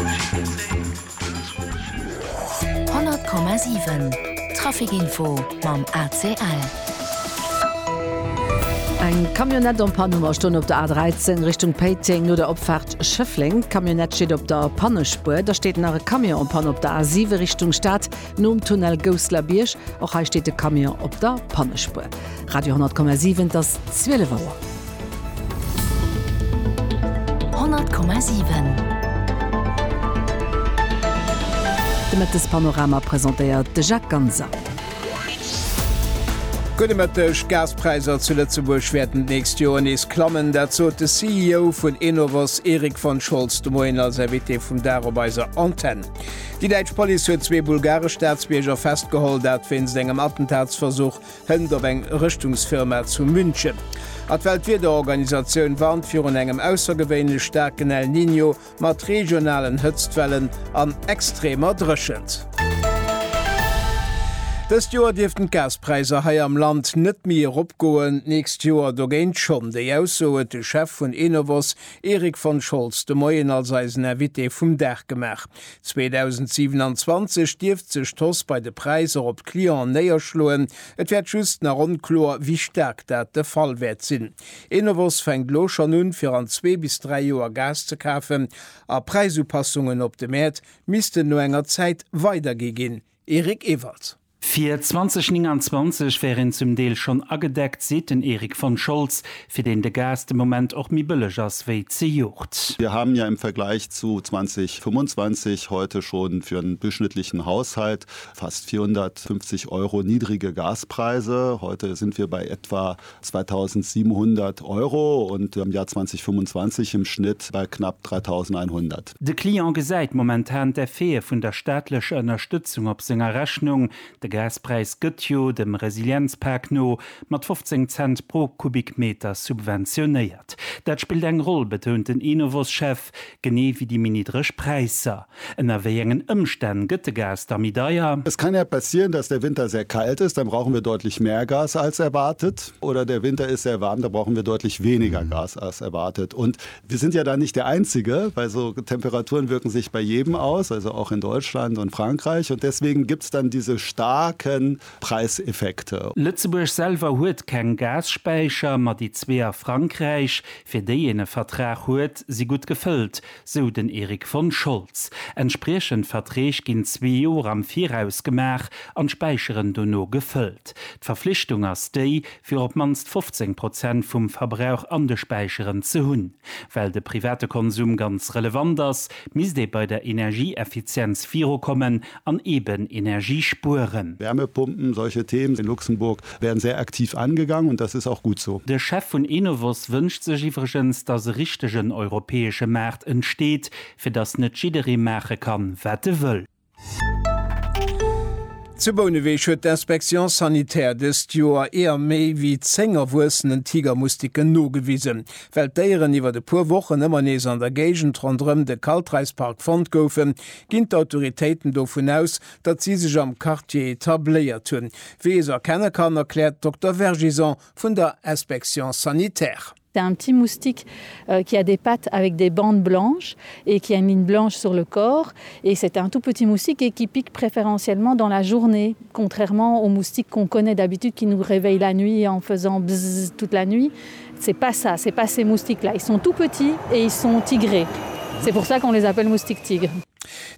100,7 Trafic Info mam ACL. Eng Camionnette en panne am Stonn op der A13 Richtung Péiteng no der Opfaart Schëffleng. D'Camionnette steet op der Pannespuer. Da steet nach e Camion en panne op der A7 Richtung Stad. Nom Tunnel Gousselerbiërg, och hei steet de Camion op der Pannespuer. Radio 10,7 Et ass 12 Auer. 100,7 De Mëttespanorama presentéiert de Jacques Ganser. Gudde Mëtteg, D'Gaspräisser zu Lëtzebuerg wäerten d'nächst Joer nees klammen. Dat sot de CEO vun Enovos, Erik von Scholz, de Moien als Invité vum Dag op eiser Antenn. Déi däitsch Police huet zwee bulgaresch Staatsbierger festgeholl, dat wéinst engem Attentatsversuch hënt op eng Rëschtungsfirma zu München. A d'Weltwiederorganisatioun warnt virun engem aussergewéinlech staarken El Niño mat regionalen Hëtztwellen an extremer Dréchent. Dëst Joer dierften d'Gaspräisser hei am Land net méi eropgoen, d'nächst Joer dogéint schonn. Déi Ausso huet de Chef vun Enovos, Erik von Scholz, de Moien als eisen Invité vum Dag gemaach. 2027 dierft sech d'Hausse bei de Präisser op d'Clienten néierschloen, et wäert just nach onkloer, wéi staark dat de Fall wäert sinn. Enovos fänkt elo schonn un, fir an zwee bis dräi Joer Gas ze kafen a Präisupassungen op de Mäert missten no enger Zäit weidergi ginn. Eric Ewald. Fir 2029 wär een zum Deel schonn agedeckt, seet den Erik von Scholz, fir deen de Gas de Moment och méi bëlleg ass wéi zejoert. Wir haben ja im Vergleich zu 2025 heute schon für einen durchschnittlichen Haushalt fast 450 Euro niedrige Gaspreise. Heute sind wir bei etwa 2.700 Euro an am Jahr 2025 im Schnitt bei knapp 3.100. De Client gesäit momentan d'Effete vun der staatlecher Ënnerstëtzung op senger Rechnung. De Gaspräis gëtt jo, dem Resilienzpak no, mat 15 Cent pro Kubikmeter subventionéiert. Dat spillt eng Roll, betount den Enovos-Chef, genee wéi déi méi niddreg Präisser. Ënner wéi engen Ëmstänn gëtt de Gas da méi deier? Es kann ja passieren, dass der Winter sehr kalt ist, dann brauchen wir deutlich mehr Gas als erwartet, oder der Winter ist sehr warm, dann brauchen wir deutlich weniger Gas als erwartet. Und wir sind ja da nicht der Einzige, weil so Temperaturen wirken sich bei jedem aus, also auch in Deutschland und Frankreich, und deswegen gibt es dann diese starken Preiseffekte. Lëtzebuerg selwer huet keng Gasspäicher, ma déi zwee a Frankräich, fir déi een e Vertrag huet, si gutt gefëllt. sou den Erik von Scholz. Entspriechend Verträg ginn zwee Joer am Viraus gemaach an d'Späicheren dono gefëllt. D'Verflichtung ass déi, fir op d'mannst 15 Prozent vum Verbrauch an de Späicheren ze hunn. Well de private Konsum ganz relevant ass, misst ee bei der Energieeffizienz virukommen an eben Energie spueren. Wärmepumpen, solche Themen in Luxemburg werden sehr aktiv angegangen, und das ist auch gut so. De Chef vun Enovos wënscht sech iwwregens, datt e richtegen europäesche Maart entsteet, fir datt net jidderee maache kann, wat e wëll. Zu Bouneweg huet d'Inspection sanitaire dëst Joer eeër méi wéi 10 erwuessenen Tigermoustiquen nogewisen. Well d'Déieren iwwert e puer Wochen ëmmer nees an der Géigend ronderëm de Kaltreispark fonnt goufen, Ginn d'Autoritéiten dovun aus, datt si sech am Quartier etabléiert hunn, wéi ee se erkenne kann, erkläert d'Dokter Vergison vun der Inspection sanitaire. C'est un petit moustique qui a des pattes avec des bandes blanches et qui a une ligne blanche sur le corps et c'est un tout petit moustique et qui pique préférentiellement dans la journée, contrairement aux moustiques qu'on connaît d'habitude qui nous réveillent la nuit en faisant bzzz toute la nuit. C'est pas ça, c'est pas ces moustiques là, ils sont tout petits et ils sont tigrés, c'est pour ça qu'on les appelle moustiques tigres.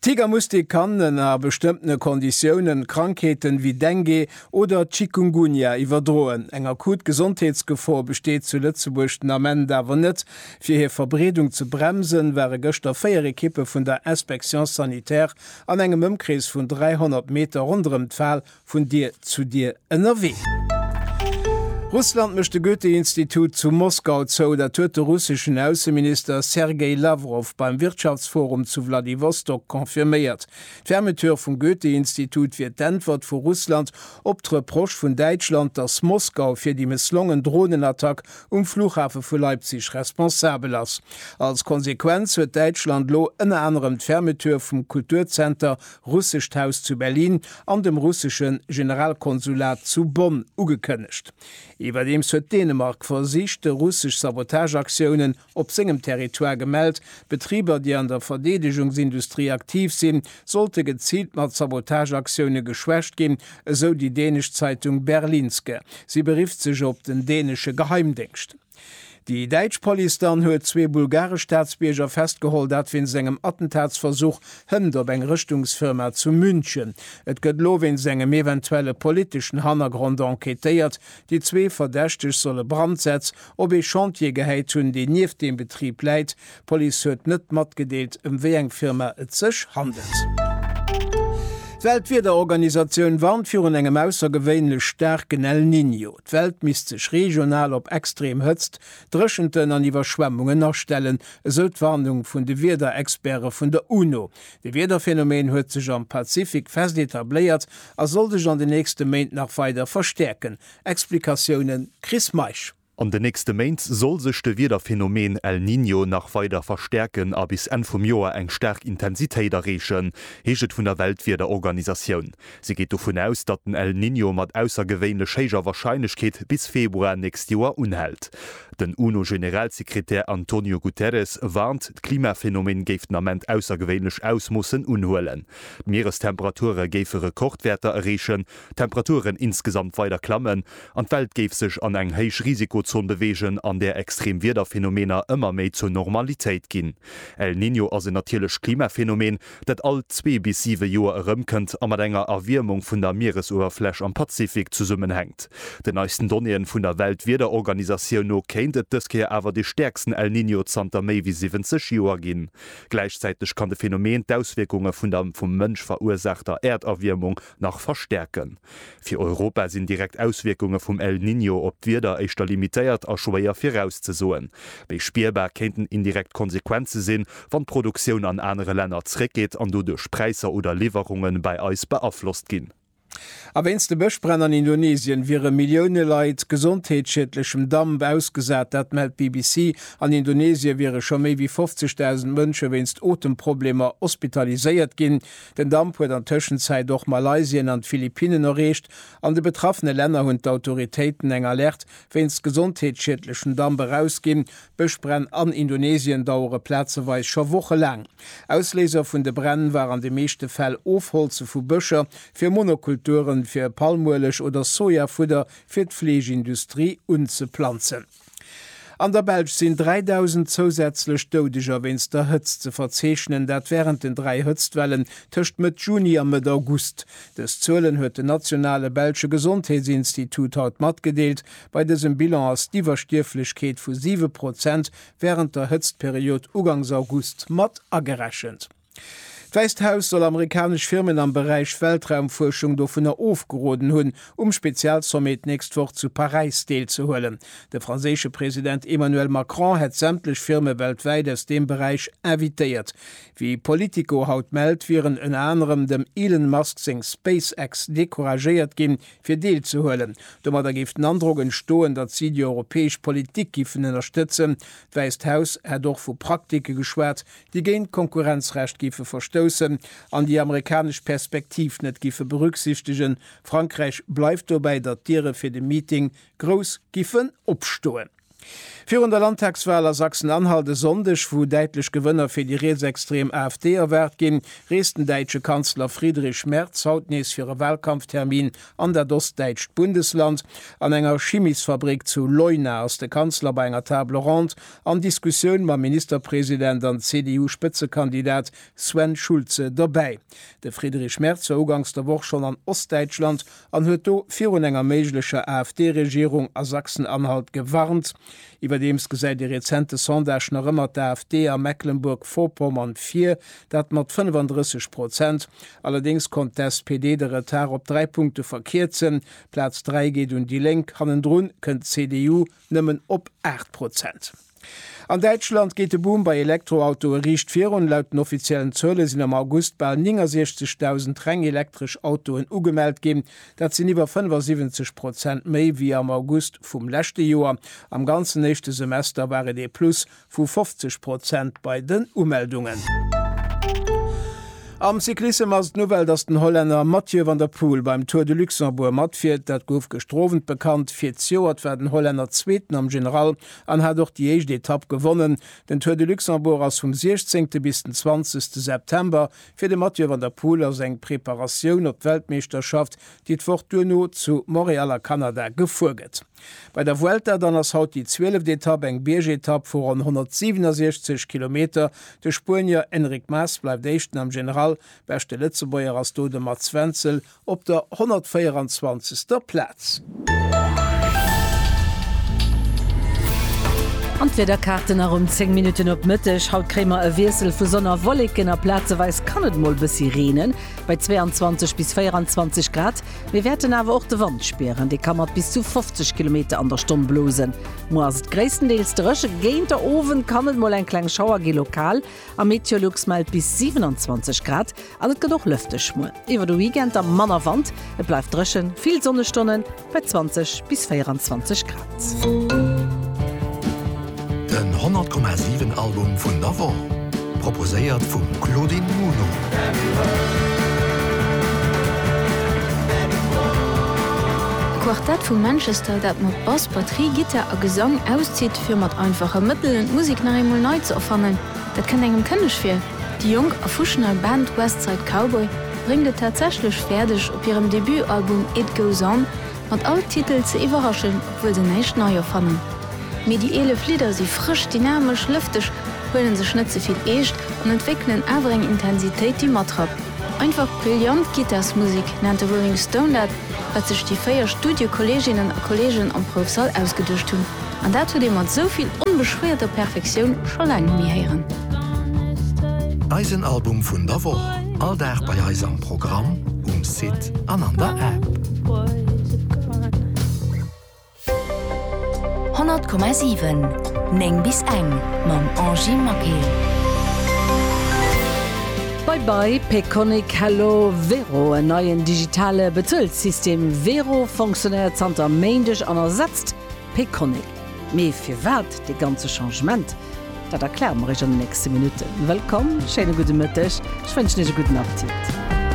Tigermustik kann ënner bestëmmtene Konditiounen Krankheeten ewéi Dengue oder Chikungunya iwwerdroen. Eng akut Gesondheetsgefor besteet zu Lëtzebuerg den Ament awer net. Fir hir Verbreedung ze bremsen, ware gëschter 4 Ekippe vun der Inspection sanitaire an engem Ëmkrees vun 300 Meter ronderëm d'Fal Vun Dier zu Dier ënnerwee. Russland mécht de Goethe-Institut zu Moskau zou. Dat huet de russeschen Ausseminister Sergei Lawrow beim Wirtschaftsforum zu Wladiwostok confirméiert. D'Fermeture vum Goethe-Institut wier d'Äntwert vu Russland op d'Reproche vun Däitschland, datt Moskau fir déi mësslongen Dronenattack um Flughafe vu Leipzig responsabel ass. Als Konsequenz huet Däitschland lo ënner anerem d'Fermeture vum Kulturzenter Russescht Haus zu Berlin an dem russesche Generalkonsulat zu Bonn ugekënnegt. Iwwerdeems huet Dänemark versicht, russesch Sabotageaktiounen op sengem Territoire gemellt. Betriber, déi an der Verdeedegungsindustrie aktiv sinn, sollte geziilt mat Sabotageaktioune geschwächt ginn, esou déi dänesch Zeitung Berlingske. Si berifft sech op den dänesche Geheimdéngscht. Déi däitsch Police dann huet zwee bulgaresch Staatsbierger festgeholl, dat wéinst engem Attentatsversuch hënt op eng Rëschtungsfirma zu München. Et gëtt elo wéinst engem eventuelle politeschen Hannergrond enquêtéiert. Déi zwee Verdächteg solle Brandsätz op ee Chantier gehäit hunn, deen nieft deem Betrib läit, D'Police huet net matgedeelt, ëm wéi eng Firma et sech handelt. D'Weltwiederorganisatioun warnt virun engem aussergewéinlech staarken El Niño. D'Welt misst sech regional op extreem Hëtzt, Dréchenten an Iwwerschwemmungen astellen, esou d'Warnung vun de Wiederexperte vun der UNO. De Wiederphänomen huet sech am Pazifik fest etabléiert a soll sech an den nächste Méint nach weider verstäerken. Explikatiounen, Chris Meisch. An de nächste Méint soll sech de Wiederphenomen El Niño nach weider verstäerken a bis Enn vum Joer eng staark Intensitéit erreechen, heescht et vun der Weltwiederorganisatioun. Si geet dovun aus, datt den El Niño mat aussergewéinlech héijer Warscheinlechkeet bis Februar nächst Joer unhält. Den UNO-Generalsekretär Antonio Guterres warnt, d'Klimaphenomen géif den Ament aussergewéinlech Ausmoossen unhuelen. D'Mierestemperature géife Rekordwäerter erreechen d'Temperaturen insgesamt weider klammen an d'Welt géif sech an eng héich Risikozon beweegen, an där extrem Wiederphenomener ëmmer méi zur Normalitéit ginn. El Niño ass en natierlecht Klimaphenomen, dat all zwee bis siwe Joer erëmkënnt a mat enger Erwiermung vun der Mieresuewerfläch am Pazifik zesummenhänkt. Den neisten Donnéeën vun der Weltwiederorganisatioun no kéint et dës Kéier awer de stäerksten El Niño zanter méi wéi 70 Joer ginn. Gläichzäiteg kann de Phenomen d'Auswierkunge vun der vum Mënsch verursaachter Äerderwiermung nach verstärken. Fir Europa sinn direkt Auswierkunge vum El Niño op d'Wieder éischter limitéiert a schwéier virauszesoen. Méi spierbar kéinten indirekt Konsequenze sinn, wann d'Produktioun an anere Länner zréckgeet an doduerch d'Präisser oder Liwwerunge bei eis beaflosst ginn. A wéinst de Bëschbränn an Indonesien wiere Millioune Leit gesondheetsschiedlechem Damp ausgesat. Dat mellt d'BBC. An Indonesie wiere scho méi wéi 50.000 Mënsche wéinst Otemproblemer hospitaliséiert ginn. Den Damp huet an Tëschenzäit och Malaysien an d'Philippinnen erreecht. An de betraffene Länner hunn d'Autoritéiten eng Alerte wéinst gesondheetsschiedlechem Damp erausginn. D'Bëschbränn an Indonesien dauere plazeweis scho Woche laang. Ausléiser vun de Bränn war an de meeschte Fäll Ofholze vu Bëscher fir Monokulturen, fir Palmueleg oder Sojafudder fir d'Fleegindustrie unzeplanzen. An der Belsch sinn 3.000 zousätzlech Doudeger wéinst der Hëtzt ze verzeechnen, dat wärend den dräi Hëtztwellen tëscht Mëtt Juni a Mëtt August. Dës Zuelen huet den nationale belsche Gesondheetsinstitut haut matgedeelt. Bei dësem Bilan ass d'Iwwerstierflechkeet vu siwe Prozent wärend der Hëtztperiod ugangs August mat agerechent. D'Wäisst Haus soll amerikanesch Firmen am Beräich Weltraumfuerschung dovunner ofgeroden hunn, um Spezialsommet d'nächst Woch zu Paräis deelzehuelen. De franséische President Emmanuel Macron hätt sämtlech Firme weltwäit aus deem Beräich invitéiert. Wéi Politico haut mellt, wieren ënner anerem dem Elon Musk seng SpaceX decouragéiert ginn, fir deelzehuelen. Domadder géif den Androck entstoen, datt si déi europäesch Politik giffen ënnerstëtzen. D'Wäisst Haus hätt och vu Praktike geschwat, déi géint d'Konkurrenzrecht géife verstoussen an déi amerikanesch Perspektiv net géife berücksichtegen. Frankräich bleift dobäi, datt d'Diere fir de Meeting grouss giffen opstoen. Virun der Landtagswal a Sachsen-Anhalt e Sonndeg, wou däitlech Gewënner fir déi rietsextrem AfD erwaart ginn, reest den däitsche Kanzler Friedrich Merz haut nees fir e Walkampftermin an dat ostdäitscht Bundesland. An enger Chimisfabrik zu Leuna ass de Kanzler bei enger Table ronde An Diskussioun mam Ministerpresident an CDU-Spëtzekandidat Sven Schulze dobäi. De Friedrich Merz war uganks der Woch schonn an Ostdäitschland an huet do virun enger méiglecher AfD-Regierung a Sachsen-Anhalt gewarnt. Iwwerdeems gesäit ee rezente Sondage nach ëmmer d'AfD a Mecklenburg-Vorpommern vir, dat mat 35 Prozent. Allerdéngs konnt d'SPD de Retard op dräi Punkte verkierzen, Plaz 3 geet un déi Lénk, hannendrun kënnt d'CDU, nëmmen op 8 Prozent. An Däitschland geet de Boom bei Elektroautoe riicht virun. Laut den offiziellen Zuele sinn am August bal 69.000 reng elektresch Autoen ugemellt ginn. Dat sinn iwwer 75 Prozent méi wéi am August vum leschte Joer. Am ganzen éischte Semester war et ee Plus vu 50 Prozent bei den Umeldungen. Am Cyclissem ass d'Nouvelle, datt den Hollänner Mathieu van der Poel beim Tour de Luxembourg matfiert. Dat gouf gëschter Owend bekannt. Fir d'Joert war den Hollänner Zweeten am General an hat och déi éischt Etapp gewonnen. Den Tour de Luxembourg ass vum 16. bis den 20. September. Fir de Mathieu van der Poel ass eng Preparatioun op d'Weltmeeschterschaft, déi d'Woch duerno zu Montréal a Kanada gefuer gëtt. Bei der Vuelta dann ass haut déi zwieleft Etapp, eng Biergetapp vu ronn 167 Kilometer. De Spuenier Enric Mas bleift Éischten am General, beschte Lëtzebuerger ass do de Mats Wenzel op der 124. Plaz. An d'Wiederkaarten nach um 10 Minutten op Mëtteg. Haut kréie mer e Wiessel vu Sonn a Wolleken a plazeweis kann et mol bëssi reenen, bei 22 bis 24 Grad. Mir wäerten awer och de Wand spieren, dee ka mat bis zu 50 Kilometer an der Stonn blosen. Muer ass et gréisstendeels dréch, géint der Owend kann et mol eng kleng Schauer gi lokal a Meteolux mellt bis 27 Grad an et gëtt och lëfteg. Muer iwwer de Weekend da manner Wand, et bleift dréchen, vill Sonnestonnen bei 20 bis 24 Grad. Den 100 Komma 7 Album vun der Woch, proposéiert vum Claudine Muno. E Quartett vu Manchester, dat mat Bass, Batterie, Gittar a Gesang auszitt, fir mat einfache Mëttelen d'Musek nach eemol nei ze erfannen, dat kënnt engem kënneg vir. Déi jonk a fusch nei Band West Side Cowboy bréngt et tatsächlech fäerdeg, op hirem Debutalbum It Goes On, Mat all Titel ze iwwerraschen, obwuel se näischt nei erfannen. Mee déi 11 Lidder si frësch, dynamesch, lëfteg, huelen sech net ze vill eescht an entwéckelen awer eng Intensitéit, déi matrappt. Einfach brillant Gittarsmusek nennt de Rolling Stone dat, wat sech déi véier Studiokolleeginnen a kolleegen am Proufsall ausgeduecht hunn. An dat hutt ee mat esou vill onbeschwéierter Perfektioun scho laang net méi héieren. Eisen Album vun der Woch. All Dag bei eis am Programm, um Site an an der App. 100,7 9 bis eng mam Angie Maquet. Bye bye Payconiq, Hello Wero, en neien digitale Bezuelsystem Wero fonctionéiert zanter Méindeg an ersetzt Payconiq. Mee firwat dee ganze Changement? Dat erkläre mer iech an den nächste Minutten. Wëllkomm, schéine gudde Mëtteg, ech wënschen iech e gudden Appetit.